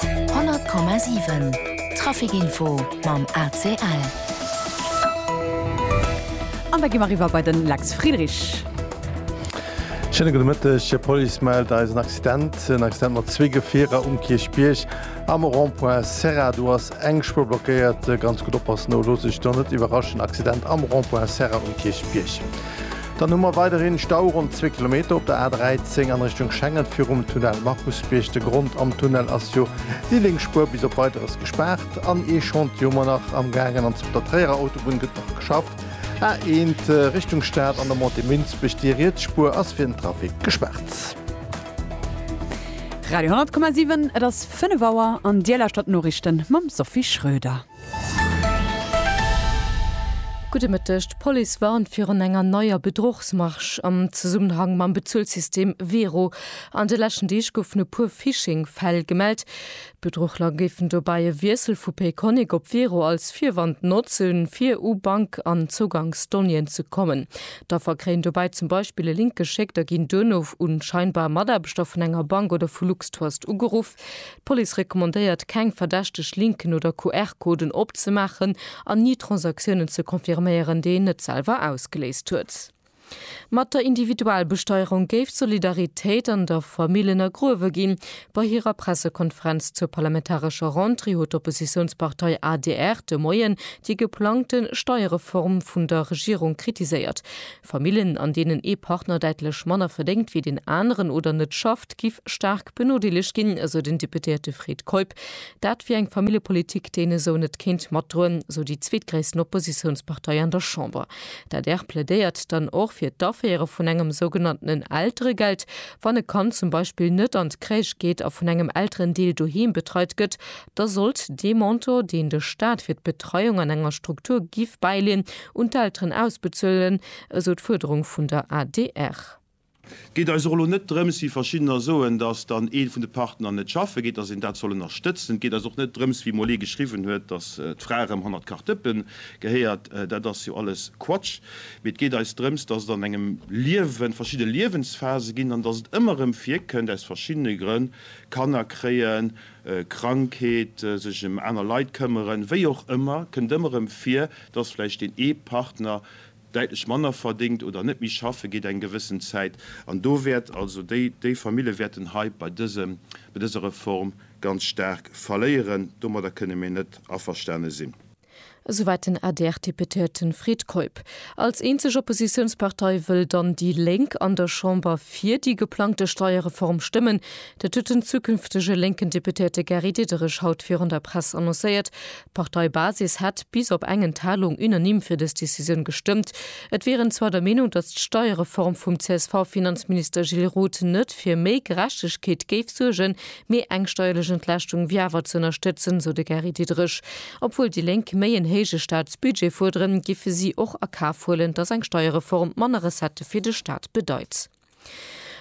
100,7 Trafic Info mam ACL. An da gi mer eriwwer bei den Lex Friedrich. Schéine gudde Mëtteg. D'Police mellt eis en Accident. En Accident mat zwee Gefierer um Kierchbierg. Am Rond-point Serra, do ass eng Spuer blockéiert. Ganz gutt oppassen, elo, looss dech do net iwwerraschen. Accident am Rond-point Serra um Kierchbierg. Dann hu mer weiderhin Stau ronn zwee Kilometer op der A13 an Richtung Schengen virum Tunnel Markusbierg. De Grond, Am Tunnel ass jo déi lénks Spuer bis op Weideres gespaart an ee Chantier mer nach am gaangen an op der Tréierer Autobunn gëtt nach geschafft. A1 Richtung Stad an der Montée Münzbech, déi riets Spuer ass fir den Trafic gespaart. Radio 10,7 Et ass 5 Auer an Dir lauschtert d'Noriichten mam Sophie Schröder. Gudde Mëtteg, D'Police warnt virun enger neier Bedrochsmarsch am Zesummenhang mam Bezuelsystem Wero. An de leschten Deeg goufen e puer Phishing-Fäll gemellt. D'Bedruchler géifen dobäi e Wiessel vu Payconiq op Wero als Virwand notzen, fir u Bank an Zougangsdonnéeën ze kommen. D'Affer kréien dobäi zum Beispill e Link geschéckt a ginn duerno un scheinbar Mataarbechter vun enger Bank oder vu Luxtrust ugeruff. D'Police recommandéiert, keng verdächteg Linken oder QR-Coden opzemaachen an ni Transaktiounen ze confirméieren, déi een net selwer ausgeléist huet. Mat der Individualbesteuerung géif d'Solidaritéit an der Famill ënnergruewe ginn. Bei hirer Pressekonferenz zur parlamentarescher Rentrée huet d'Oppositiounspartei adr de Moien déi geplangte Steierreform vun der Regierung kritiséiert. Famillen, an deenen ee Partner däitlech manner verdéngt wéi deen aneren oder net schafft, giff staark benodeelegt ginn, esou den Deputéierte Fred Keup. Dat wier eng Familljepolitik, déi een esou net kéint matdroen, esou déi zweetgréissten Oppositiounspartei an der Chamber. D'adr plädéiert dann och fir d'Aféiere vun engem sougenanntenen Elteregeld. Wann e Kand zum Beispill net an d'Crèche geet a vun engem Elterendeel doheem betreit gëtt, da sollt dee Montant, deen de Staat fir d'Betreiung an enger Struktur giff bäileen, un d'Elteren ausbezuelen, esou d'Fuerderung vun der adr. Et geet eis och elo net drëms, wéi verschiddener soen, datt dann ee vun de Partner net schaffe geet, datt een dat soll ënnerstëtzen. Et geet eis och net drëms, wéi emol ee geschriwwen huet, datt d'Fra erëm hannert d'Kartëppe gehéiert. Dat ass jo alles Quatsch. Mee et geet eis drëms, datt et an engem Liewen verschidde Liewensphase ginn an datt et ëmmer erëm virkënnt, aus verschiddene Grënn, Kanner kréien, Krankheet, sech ëm aner Leit këmmeren, wéi och ëmmer, kënnt ëmmer erëm vir, dass vläicht deen ee Partner däitlech manner verdéngt oder net méi schaffe geet eng gewëssen Zäit. An do wäert also déi déi Famille wäerten hei bei dësem bei dëser Reform ganz staark verléieren. Domadder kënne mir net averstane sinn. Esouwäit den ADR-Deputéierte Fred Keup. Als eenzeg Oppositiounspartei wëll dann déi Lénk an der Chamber fir déi geplangte Steierreform stëmmen. Dat huet den zukünftege lénken Deputéierte Gary Diderich haut virun der Press annoncéiert. D'Parteibasis hätt bis op eng Enthalung unanime fir dës Decisioun gestëmmt. Et wier en zwar der Meenung, datt d'Steierreform vum CSV-Finanzminister Gilles Roth net fir méi Gerechtegkeet géif suergen, mee eng steierlech Entlaaschtung wier awer ze ënnerstëtzen, sou de Gary Diderich. Obwuel déi Lénk méi en héije Staatsbudget fuerderen, giffe si och a Kaf huelen, datt eng Steierreform manner Recettë fir de Staat bedeit.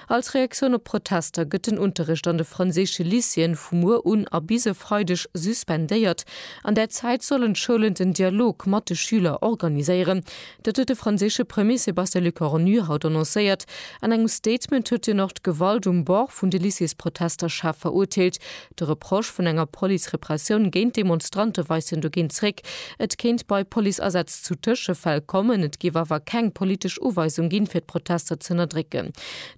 Als Reaktioun op d'Protester gëtt den Unterrecht an de franséische Lycéeën vu muer un a bis e Freideg suspendéiert. An där Zäit sollen d'Schoulen den Dialog mat de Schüler organiséieren. Dat huet de franséische Premier Sébastien Lecornu haut annoncéiert. An engem Statement huet hien och d'Gewalt um Bord vun de Lycéesprotester schaarf verurteelt, De Reproche vun enger Police-Repressioun géint Demonstrante weist hien dogéint zréck. Et kéint bei Police-Asätz zu Tëschefäll kommen, et géif awer keng politesch Uweisung ginn, fir d'Protester z'ënnerdrécken.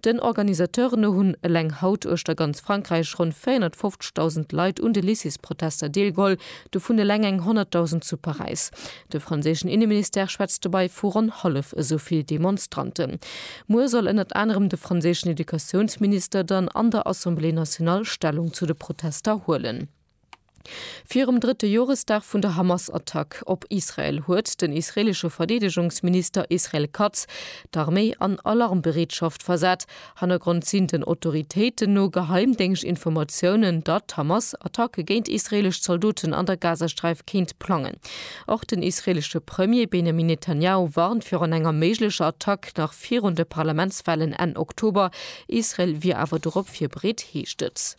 Den Organisateuren no hunn eleng haut uechter ganz Frankräich ronn 450.000 Leit un de Lycées-Protester deelgeholl, dovun eleng eng 100.000 zu Paräis. De franséischen Inneministère schwätzt dobei vu ronn hallef esou vill Demonstranten. Muer soll ënnert anerem de franséischen Educatiounsminister dann an der Assemblée nationale Stellung zu de Protester huelen. Virum drëtte Joresdag vun der Hamas-Attack op Israel huet den israeelesche Verdeedegungsminister Israel Katz d'Arméi an Alarmbereetschaft versat Hannergrond sinn den Autoritéiten no Geheimdéngschtinformatiounen, datt d'Hamas Attacke géint israeelesch Zaldoten an der Gazasträif kéint plangen. Och den israeelesche Premier Benjamin Netanjahu warnt virun enger méiglecher Attack nach virun de Parlamentswahlen Enn Oktober. Israel wier awer dorop virbereet, heescht et.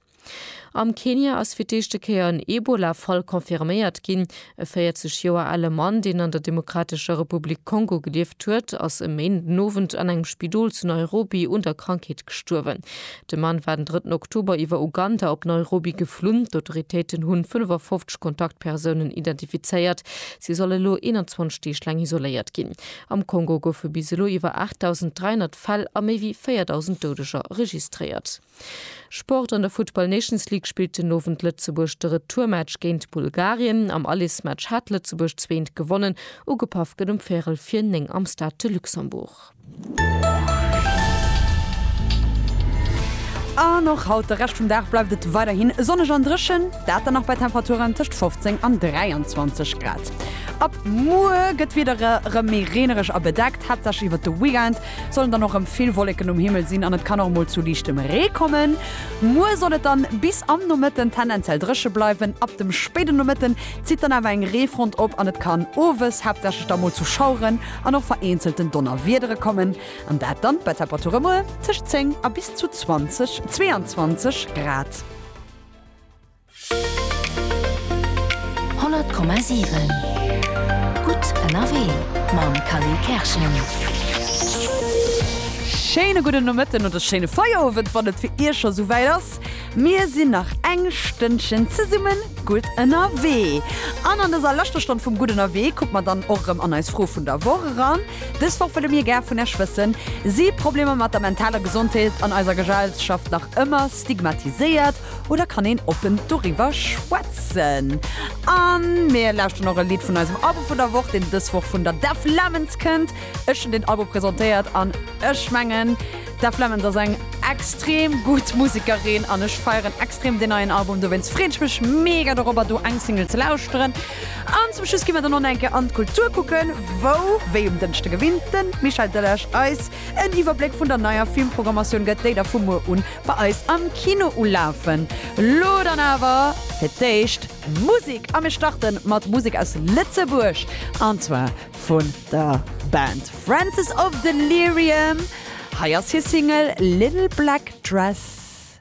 Am Kenia ass fir d'éischte Kéier en Ebola-Fall confirméiert ginn. E 40 Joer ale Mann, deen an der Demokratescher Republik Kongo gelieft huet, ass e Méinden den Owend an engem Spidol zu Nairobi un der Krankheet gestuerwen. De Mann war den drëtten Oktober iwwer Uganda op Nairobi geflunn. D'Autoritéiten hu 55 Kontaktpersounen identifizéiert. Si soll elo 21 Deeg laang isoléiert ginn. Am Kongo goufe bis elo iwwer 8.300 Fäll a méi wéi 4.000 Doudeger registréiert. Sport, An der Futtball Nations League spillt den Owend Lëtzebuerg de Retourmatch géint Bulgarien. Am Alismatch hat Lëtzebuerg zwee ent gewonnen. Ugepaff gëtt um Véirel vir 9 am Stade de Luxembourg. An och haut de Rescht vum Dag bleift et weiderhin sonneg an dréchen, dat dann och bei Temperaturen tëscht 15 an 23 Grad. Ab muer gëtt d'Wieder erëm méi reenereg a bedeckt, haaptsächlech iwwert de Weekend. Sollen dann och rem vill Wolleken um Himmel sinn an et kann och mol zu liichtem Ree kommen. Muer soll et dann bis am Nomëtten tendenziell drëche bleiwen. Ab dem spéiden Nomëtten zitt dann awer eng Reefront op an et kann owes haaptsächlech da mol zu Schaueren an och vereenzelten Donnerwiedere kommen an dat dann bei Temperature muer tëscht 10 a bis zu 20, 22 Grad. 100,7 Gutt ënnerwee mam Kally Kerschen. Schéine gudden Nomëtten oder schéine Feierowend, wann et fir Iech scho sou wäit ass. Mir sinn nach eng Stënnchen zesumme gutt ënnerwee. An an dëser leschter Stonn vum Gutt ënnerwee kucke mer dann och erëm an eis Fro vun der Woch eran. Dës Woch wëlle mir gär vun Iech wëssen, Si Problemer mat der mentaler Gesondheet an eiser Gesellschaft nach ëmmer stigmatiséiert? Oder kann een oppen doriwwer schwätzen? An mir lauschteren och e Lidd vun eisem Album vun der Woch, deen dës Woch vun der Deaf Lemons kënnt. Ech hunn deen Album presentéiert an ech mengen, d'Deaf Lemons ass eng extrem gutt Musekerin an ech feieren extrem deen neien Album. Dowéinst freeën ech mech mega dorobber, do eng Single ze lauschteren. An zum Schluss gi mer dann och nach eng Kéier an d'Kultur kucken, wou, wéi um Dënschde gewinnt, de Michel Delage eis en Iwwerbléck vun der neier Filmprogrammatioun gëtt, déi da vu muer un Bei eis am Kino ulafen lo dann awer fir d'éischt Musek a mir starte mat Musek aus Lëtzebuerg an zwar vun der Band Francis of Delirium. Hei ass hir Single Little Black Dress.